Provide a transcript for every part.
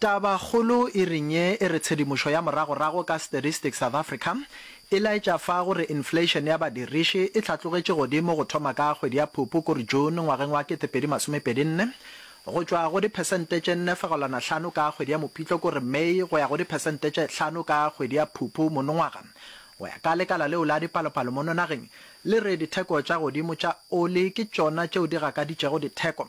Tabakgolo e reng ye e re tshedimošo ya moragorago ka Statistics South Africa e laetša fa go re inflation ya badiriši e hlatlogetše godimo go thoma ka kgwedi ya Phupu kore June ngwageng wa 2024 go tšwa go diphesente tše nne fegelwana hlano ka kgwedi ya Mopitlo kore May go ya go diphesente tše hlano ka kgwedi ya Phupu monongwaga go ya ka lekala leo la dipalopalo mono nageng le re ditheko tša godimo tša oli ke tšona tšeo di gakaditšego ditheko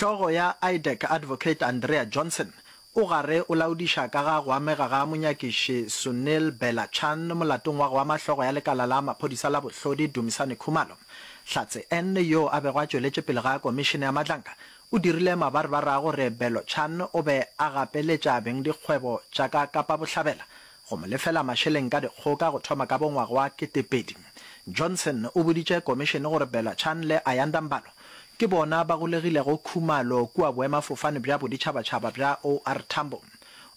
Hlogo ya IDEC Advocate Andrea Johnson o gare o laodiša ka ga go amega ga monyakiši Sunil Bella Chan molatong wa go ama hlogo ya lekala la maphodisa la bohlodi Dumisani Khumalo. Hlatse N yo a bego a tšweletše pele ga komišene ya matlanka o dirile mabarbar a gore Bello Chan o be a gapeletša bengdikgwebo tša ka Kapa Bohlabela go mo lefela mašeleng ka dikgoka go thoma ka bo ngwaga wa ketepedi. Johnson o boditše komišene gore Bella Chan le Ayanda Mbalo ke bona ba golegilego khumalo kua boemafofane bja boditšhabatšhaba bja OR Tambo.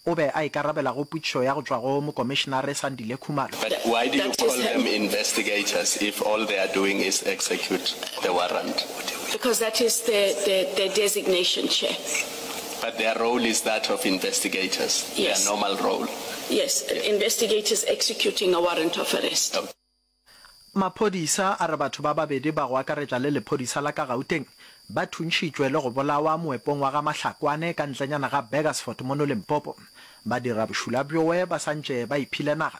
O be a ikarabela go potšišo ya go tšwa go mokomišenare Sandile Khumalo. But why do you call them investigators if all they are doing is execute the warrant? Because that is their designation, Chair. But their role is that of investigators, yes. their normal role. Yes, yes. investigators executing a warrant of arrest. Okay. Maphodisa a re batho ba babedi ba go akaretša le lephodisa la ka Gauteng ba thuntšhitšwe le go bolawa moepong wa ga Mahlakwane ka ntlenyana ga Burgersfort mono Limpopo. Ba dira bošula bjoe ba santše ba iphile naga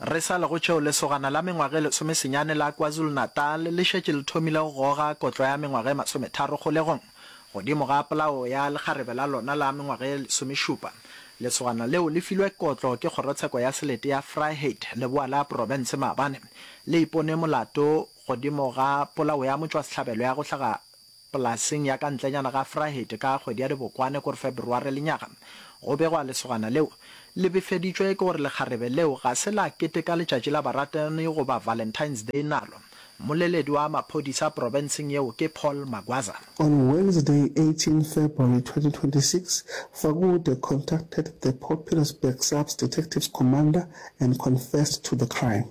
Re sa le go tšeo, lesogana la mengwaga e lesomesenyane la KwaZulu-Natal le šetše le thomile go goga kotlo ya mengwaga e masometharo kgolegong. Godimo ga polao ya lekgarebe la lona la mengwaga e lesomešupa, lesogana leo le filwe kotlo ke kgorotsheko ya selete ya Vryheid, leboa la profense maabane le ipone molato godimo ga polao ya motšwasehlabelo ya go hlaga Polaseng ya ka ntlenyana ga Vryheid ka kgwedi ya Dibokwane kor February lenyaga go begwa lesogana leo. Le befeditšwe ke gore lekgarebe leo ga se la keteka letšatši la baratani goba Valentine's Day nalo. Mmoleledi wa maphodisa profenseng yeo ke Paul Magwaza. On Wednesday, 18 February 2026, Fakude contacted the Popular's Bergsaps Detectives Commander and confessed to the crime.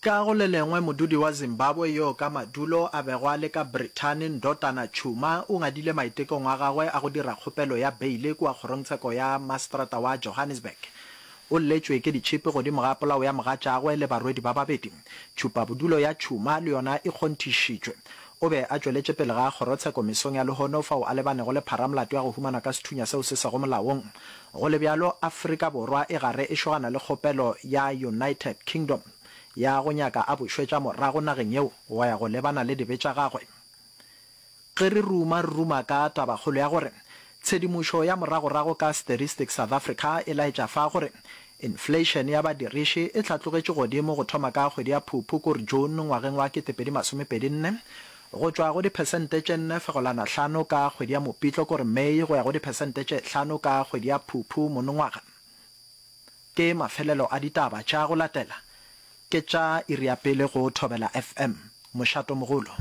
Ka go le lengwe, modudi wa Zimbabwe yo ka madulo a bego a le ka Brithani, Ndotana Tshuma, o ngadile maitekong a gagwe a go dira kgopelo ya beile kua kgorongtsheko ya maseterata wa Johannesburg. O lletšwe ke ditšhipi godimo ga polao ya mogatšagwe le barwedi ba babedi. Tšhupabodulo ya Tshuma le yona e kgonthišitšwe. O be a tšweletše pele ga kgorotsheko mesong ya lehono fao a lebanego le pharamolato ya go humanwa ka sethunya seo se sego molaong. Go le bjalo, Afrika Borwa e gare e šogana le kgopelo ya United Kingdom ya go nyaka a bušwetša morago nageng yeo go ya go lebana le dibe tša gagwe. Ge re ruma re ruma ka tabakgolo ya gore tshedimošo ya moragorago ka Statistics South Africa e laetša fa gore inflation ya badiriši e hlatlogetše godimo go thoma ka kgwedi ya Phuphukor, June, ngwageng wa 2024 go tšwa go diphesente tše nne fegolana hlano ka kgwedi ya Mopitlo kore May go ya go diphesente tše hlano ka kgwedi ya Phuphu monongwaga. Ke mafelelo a ditaba tša go latela, ke tša iri ya pele go Thobela FM. Mošatomogolo.